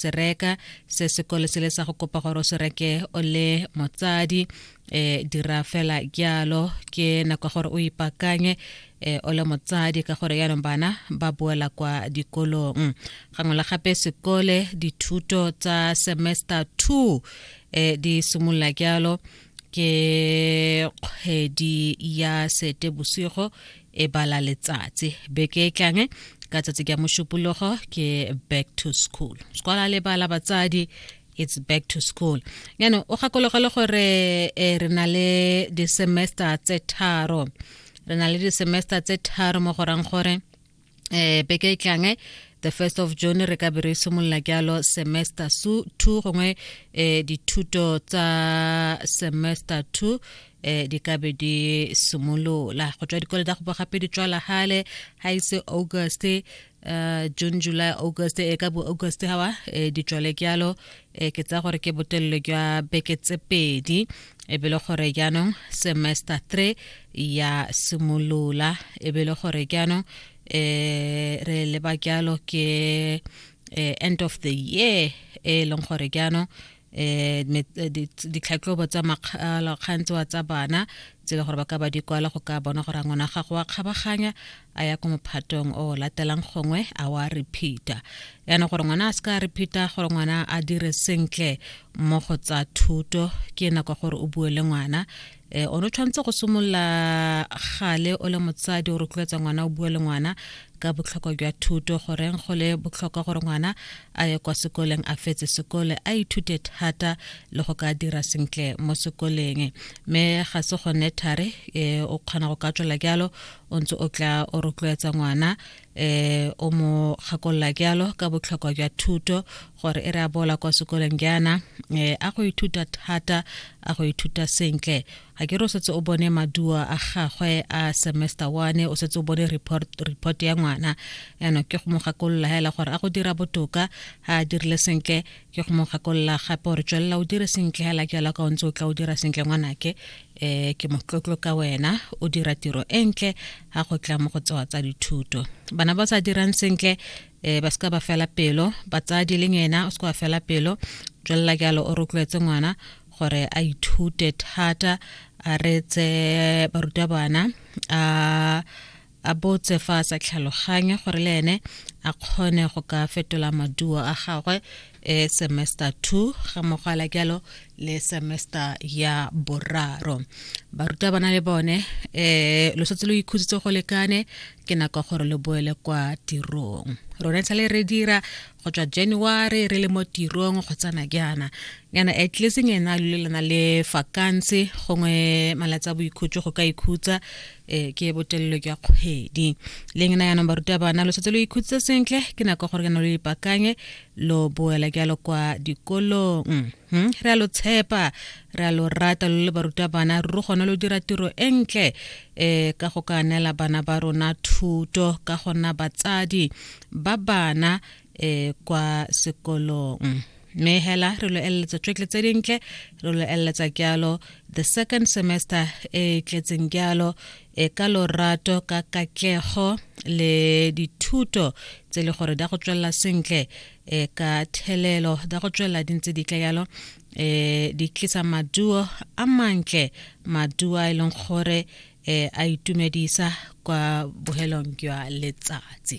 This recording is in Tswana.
se reka se sekolo se le sa go kopa gore o se reke o le motsadi eh dira fela jalo ke nako gore o ipakanye eh o le motsadi ka gore yaanong bana ba boela kwa dikolong gangwe la gape sekole dithuto tsa semester 2 eh di simolola jalo ke kgwedi ya sete bosigo e bala letsatsi beke e tlang ka tsatsi ke mošupologo ke back to school sekola le bala batsadi it's back to school yaanong o gakologa le gore eh, re na le di-semester tse tharo re na le di-semester tse tharo mo gorang gore eh beke e tlang eh, the first of june re ka be re simolola jalo semester su two gongwe eh dithuto tsa semester two eh di ka be di simolola go tswa dikolo tsa go gape di tswala gale ga ise august uh, june july august e ka bo august gawa eh, di tswale jalo e ke tsa gore ke botelelo jwa beke tse pedi e be le gore jaanong semester three ya simolola e be le gore jaanong um re leba jalo ke um end of the year e leng gore jaanong Eh, eh, ditlhatlhobo tsa makgalokgang tsewa tsa bana tse e le gore ba ka ba di kwala go ka bona gore a ngwana gago wa kgabaganya a ya ko mophatong o o latelang gongwe a wa repeater yana gore ngwana a se ka repeater gore ngwana a dire sentle mo go tsa thuto ke nako gore o bue le ngwana um o ne o tshwanetse go simolola gale o le motsadi o rotloetsa ngwana o bue le ngwana ka botlhokwa jwa thuto goreng go le botlhokwa gore ngwana a ye kwa sekoleng a fetse sekole a ithute thata le go ka dira sentle mo sekoleng mme ga se gone thare e, o kgona go ka tswela jalo o ntse o tla o rotloetsa ngwana eh o mo gakolola jalo ka botlhokwa jwa thuto gore e re a bola kwa sekolong jaana eh a go ithuta thata a go ithuta sentle ga ke re o setse o bone maduo a gagwe a semester one o setse o bone report report ya ngwana yana ke go mo gakolola hela gore a go dira botoka ha a dirile sentle ke go mo gakolola gape gore tswelela o dire sentle hela ke alaka o ntse o tla o dira sentle ngwanake um ke motlotlo ka wena o dira tiro e ntle ga go tla mo go tsewa tsa dithuto bana ba sa dirang sentle um ba seka ba fela pelo batsadi le ngena o seka ba fela pelo tswelela ke alo o rotloetse ngwana gore a ithute thata a retse barutabana a a botse fa a sa tlhaloganye gore le ene a kgone go ka fetola maduo a gagwe e semester 2 ga mogwala jalo le semester ya boraro baruta bana le bone um lo setse lo ikhutsitse go lekane ke nako gore lo boele kwa tirong rona e sale re dira go tswa january re le mo tirong go tsana jaana yana at least ngena le lena le vacancy gongwe malatsi a boikhutso go ka ikhutsa um ke botelelo jwa kgwedi le ngena yanong baruta bana lo setse lo ikhutse sentle ke nako gore kana lo ipakanye lo boela jalo kwa dikolong Hmm, re a lo tshepa re a lo rata lo le barutabana ruri gone lo dira tiro e ntle um ka go ka neela bana ba rona thuto ka gona batsadi ba bana um kwa sekolong mme hela re lo eleletsa tšwetle tse dintle re lo eleletsa jalo the second semester e tletseng jalo e ka lorato ka katlego le dithuto tse le gore di go tswelela sentle e ka thelelo da go tswelela di ntse di tle yalo um di tlisa maduo a mantle maduo a e leng gore um a itumedisa kwa bohelong jwa letsatsi